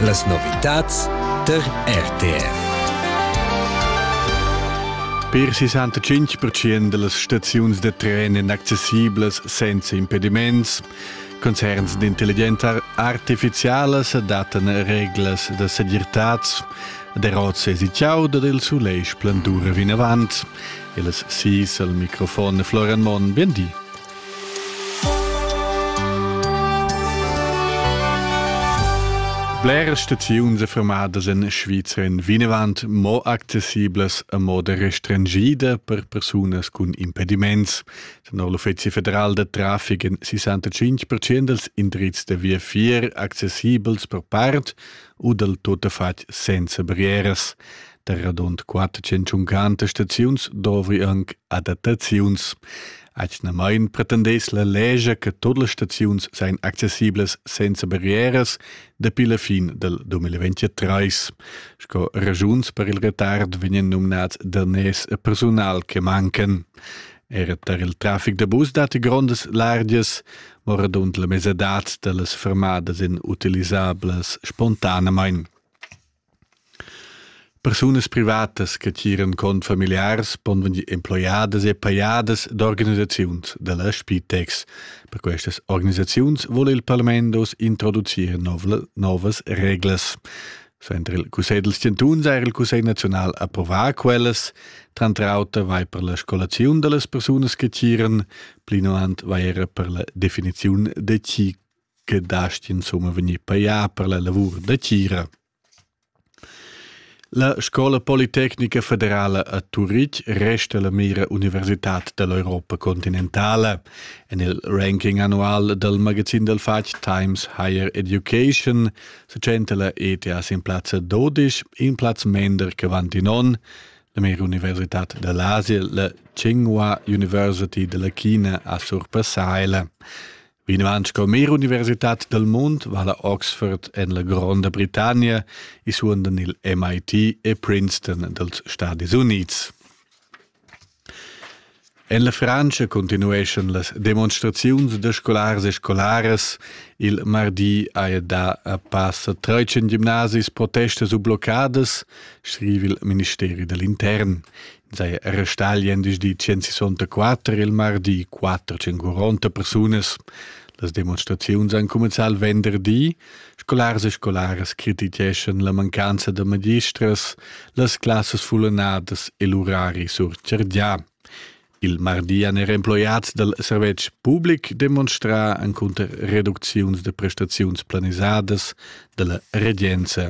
Las novitads tar RTR. Per 65% delles staziuns da tren èn accessiblas senza impediments. Concerns d'intelligenza artificialas adattano reglas da segirtad. Der Rotze si ciao da il sulei splendur vinavant. Il sis al microfon Florian Monn, bien di. Bleras staziuns e fermadas en Svizra en vinavant mo accessiblas a moda restringida per persunas cun impediments. Tenor l'Uffizi federal da traffic en 65% dals indrizs da via fier accessibels per part u dal tuttafatg senza barrieras. Da radund 450 staziuns dovri anche adattaziuns. Atgnamain pretendess la legia che tut las staziuns seien accessiblas senza barrieras dapi la fin del 2023. Sco ragiuns per il retard vegnan numnads daners e personal che mancan. Era tar il trafic da bus datti grondas largias, ma radund la mesadad da las fermadas en utilisablas spontanamain. Persunas privatas che tgiran cont familiars pon vegnir emploiadas e pajadas d'organisaziuns da la Spitex. Per questas organisaziuns vul il parlament oz introducir novas reglas. Suenter il Cussegl dels Chantuns ha er il Cussegl naziunal approvà quellas. Tranter auter vai per la scolaziun da las persunas che tgiran, plinavant vai era per la definiziun de chi che dasti insomma vegnir pajà per la lavur da tgira. La Scola Politecnica Federala a Turitg resta la mira universitad dall'Europa continentale. En il ranking annual dal magazin dal fatg Times Higher Education se tschenta la ETS in plazza 12, in plaz mender che Vantinon. La mira universitad dall'Asia, la Tsinghua University della China a surpassaila. Vinavant sco mer universitat dal mund va la Oxford en la Gronda Britannia e suondan il MIT e Princeton dals Stadis Unids. En la Frantscha continueschan las demonstraziuns da scolars e scolaras. Il mardi haja dà a passa 13 gimnasis protestas u bloccadas, scrive il Ministeri dell'Intern. sei era star gliendisdi 164 il mardi 440 persunas las demonstraziuns han cumenzà il venderdi scolars e scolaras crititgeschan la mancanza da magistras las classas fullanadas e l'urari surchargià Il mardi han er emploiads dal servetsch public demonstrà encunter reducziuns da prestaziuns planisadas da la regenza.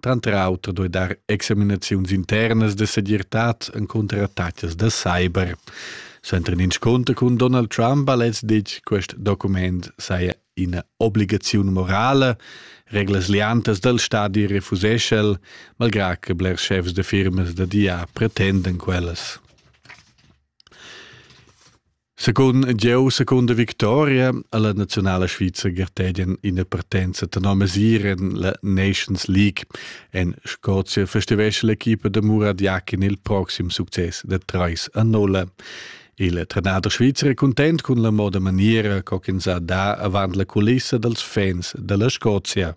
Tranter auter doi dar examinaziuns internas de segirtad encunter attacas da cyber. Senter in insconter cun Donald Trump ha lez ditg quest document saia ina obligaziun morale, reglas liantas dal stadi refusesce el, malgrad che bler chefs de firmas da dia pretenden quellas. Secund jeu, secunda victoria alla nazionala svizra gartedien ina partenza tenor mesira en la Nations League. En Scozia festivesce l'equipa da Murad Yakin il proxim success da 3 a 0. Il trenader svizzer è content cun la moda maniera co ch'ins ha da avant la culissa dals fans dalla Scozia.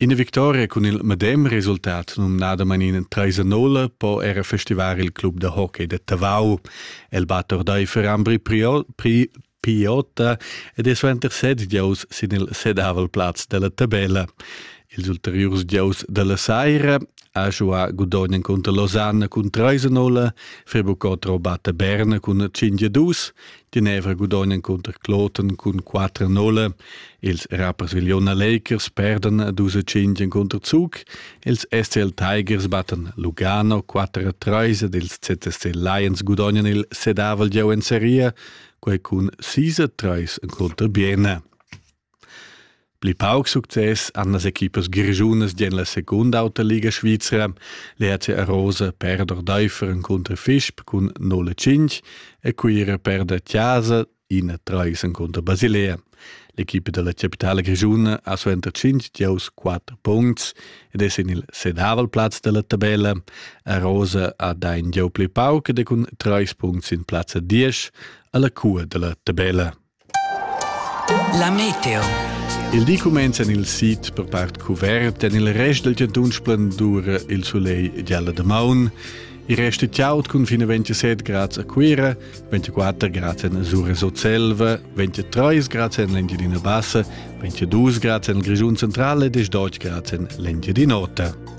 Ina victoria cun il medem resultat, numnadamain ina treisa nulla, po era festivar il club da hockey da Tavau. El batt ordaifer Ambri Piota ed è suenter set gieus sin il sedavel plaz dalla tabella. Ils ulteriurs gieus dalla saira ha giuà Gudogn cunter Losanna cun 3-0, Fribucotro batta Bern cun 5-2, Genevra gudogn encunter Kloten cun 4-0. Ils Rapperswil-Jona Lakers perdan 12-5 encunter Zug. Els SCL Tigers batten Lugano 4-3 ed ils ZSC Lions gudognan il sedavel gieu en Serie, quei cun 6-3 encunter Biena. Pli pauc success han las equipas grischunas en la secunda auta liga svizra. L'ERC Arosa perda ordaifer encunter Fisp cun 0-5 e Cuira perda Tiasa 1-3 encunter Basilea. L'equipa della capitale grischuna ha suenter 5 giows 4 punts ed è sin il sedavel plaz della tabella. Arosa ha da in gieu pli pauc ed è cun 3 punts in plazza 10 alla cua della tabella. La meteo. Il di cumenza il sit per part cuvert en il rest del giantun splendur il soleil gialla de maun. Il rest è tiaut cun fine 27 grads a Cuira, 24 grads en Sura Sotselva, 23 grads en l'Engiadina Bassa, 22 grads en Grigiun Centrale e 18 grads en l'Engiadin'Ota.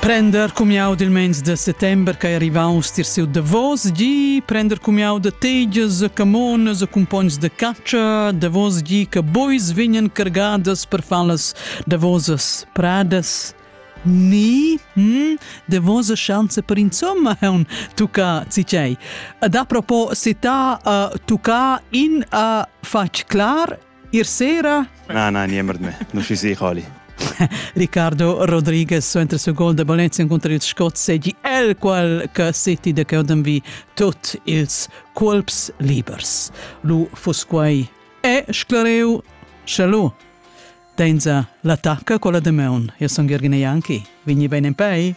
Prender cumiau dil meins de settember che ei arrivaus tier siu Davos gi, prender cumiau de tegias, camonas e cumpogns de catscha, Davos gi che bois vegnan cargadas per far las davosas pradas. Ni, hm, davosa chance per insomma haun tucca cicei. Ad apropos sita uh, tucca in uh, fatg clar Ir sera? Na, na, niemand mehr. Non ci sei, Holly. Ricardo Rodriguez suenter il gol da Valencia contro il Scott segi el qual che City de Keoden vi tut ils colps libers. Lu fus quai e sclareu Shalom. Denza l'attacca con la de Meun. Io sono Gergine Janki. Vigni bene in pei.